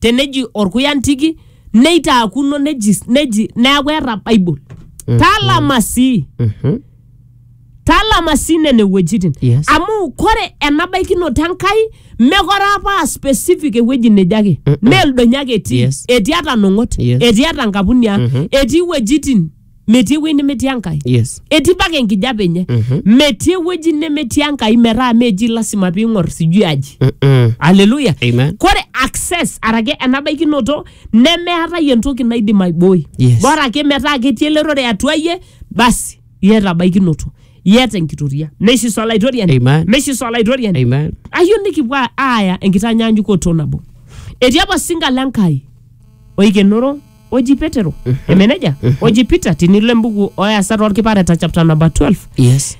teneji orkuya ntiki neitaakuno neji neji neaku eeta bible talama sii Mhm. talama sii nene wuejitin Yes. amu kore enabaikinoto enkai mekore apa aa specific ewueji neje ake meeldonyo ake etii Yes. etii ata nong'ot Yes. etii ata nkapuni ang etii wuejitin metii ewueji nemetii enkai yes etii mpaka enkijape enye Mhm. metii ewueji nemetii enkai metaa meji lasima piing'or sijui aji Mm-mm. aleluya Amen. kore access arake enabaikinoto nemeetae entoki naidim aibooi Yes. bora ake metaa ketii elerore atua iyie basi iyata baikinoto iyata enkitoria meishiso olaitoriani Amen. meishiso olaitoriani Amen. ayieu nikipuo aaya enkitanyanyukoto nabo etii apa osinka le nkai oikenoro oji petero emeneja oji peter tinilo embuku oeasat olkipareta chapter number 12 yes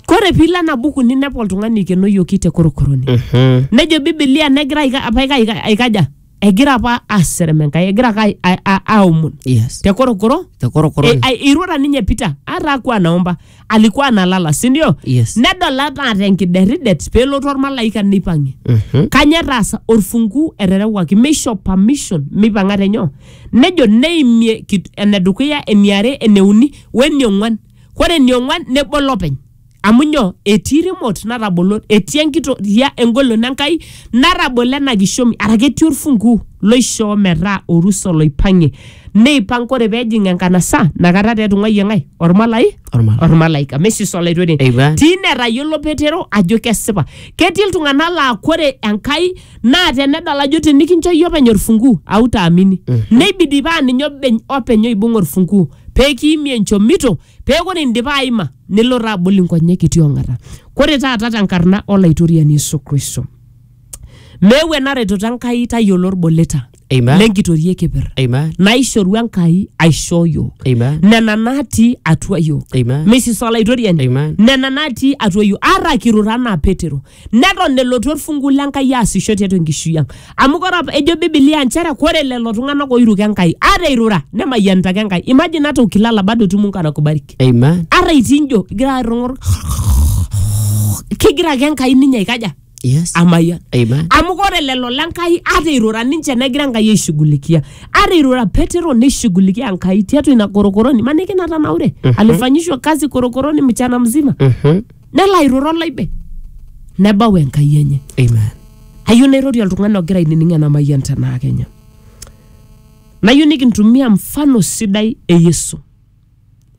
kore piilo ena buku ninepu oltung'ani eikenoyioki te korokoroni Mhm. nejo bibilia negira aika- apa aika- aika- aikaja egira apa aserem enkai egira ake ai- ai- a- aomon yes te korokoro te korokoro Eh, ai- irura ninye peter ata aku anaomba alikuwa analala si ndio Yes. nedol ata tenkideridet peelotu ormalaika neipang'ie Mhm. kanya etaasa orfungu eterewaki meisho permission meipang'a tenyoo nejo neimie kit- enedukuya eniare eneuni weniong'uan kore eniong'uan nebol openy amu nyoo etii remote natabolo etii enkitoria engolon enkai natabolo ena kishomi arake etii orfungu loishoo metaa orusa oloipang'ie neipang ore pejing enkanasa nakata taa etung'uayie ng'ae ormalai Ormalai. ormalaika mesis olaitoriani Eipa. tine etayiolo petero ajo kesipa ketii iltung'anak laa kore enkai naa tenedol ajo tinikincho iyie openy orfunguu autaamini neibidi paa ninye obeny- openy oibung orfunguu pekiimie enchomito pee kore indipa aima nilo taa abol inkonyek itii ong'ata kore taata tenkarna olaitoriani yesu kristo meewu ena retoto enkai tayiolo orboleta Amen. lenkitoria e keper Amen. naishoru enkai aishoo yiok Amen. nena natii atua yiok Amen. mrs olaitoriani Amen. nena natii atua yiok ara kirura anaa petero neton elotu orfungu lenkai aasisho tiatua enkishui ang amu kore apa- ejo bibilia nchere kore lelo tung'anak oiruka enkai ata eirura nemayianita ake enkai imagine hata ukilala bado tu mungu anakubariki Amen. ara itii njo igira airrung'ur kegira ake enkai ninye aikaja Yes. amayian Amen. amu ore lelo lenkai ata irura ninche negira enkai aishughulikia ata irura petero neishughulikia enkai tiatua ina korokoroni maniki natanaure alifanyishwa kazi korokoroni mchana mzima Mhm. nelo airura olaibe nebau enkai enye Amen. ayieu nairorie oltung'ani ogira ainining ena mayian tenaa kenya nayieu nikintumia mfano sidai e yesu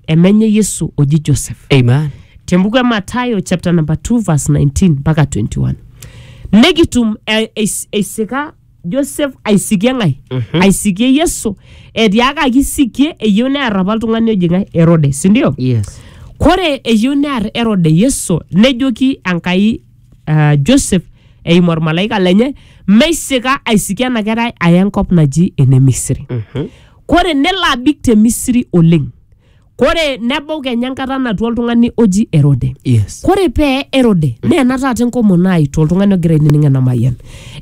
emenye Yesu oji Joseph. Amen. Tembuku e Mathayo chapter number 2 verse 19 mpaka 21. Nekitum eh, eis- eisika Joseph aisikie ng'ae? Aisikie Yesu. Etiakaki isikie eyieu near apa oltung'ani oji ng'ae? Herode, si ndio? Yes. Kore eyieu near Herode Yesu nejoki Enkai ah, Joseph eimu olmalaika lenye meisika aisikie ena kerai aya enkop naji ene Misri. kore nelo abik te misiri oleng kore nebau kenya enkata natua oltung'ani oji erode yes kore pee erode naa ena taata enkomono ai toltung'ani ogira ainining ena mayian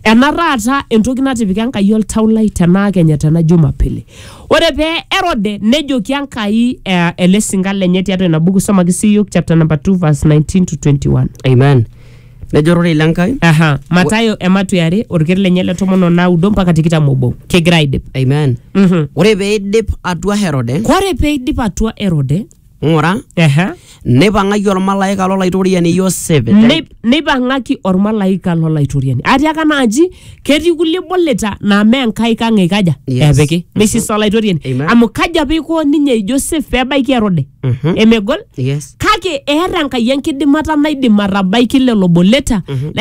ena taata entoki natipika enkai oltau lai tenaa kenya tena jumapili ore pee erode nejoki enkai eh, ele sinka lenye tiatua ina buku somaki sii iyiok chapter number 2 verse 19 to 21 amen Nejo ororei le Nkai. Aha. Matayo ematu e are orker lenye le tomon o naudo mpaka tikitam obo. Kegira aidip. Amen. Mhm. Ore pee eidip atua Herode, Kore pee eidip atua Erode, ng'ura, aha, neipang'aki olmalaika lo laitoriani Yosef. te- nei- neipang'aki olmalaika lo laitoriani. Atiaka naaji Ketii kulie boleta naa mee nkaik ang eikaja Yes. epiki meisisa olaitoriani Amen. amu kaji apa eiko ninye Joseph pebaiki Herode Mhm. emegol Yes. kake eeta Enkai enkidimata naidim atabaiki lelo boleta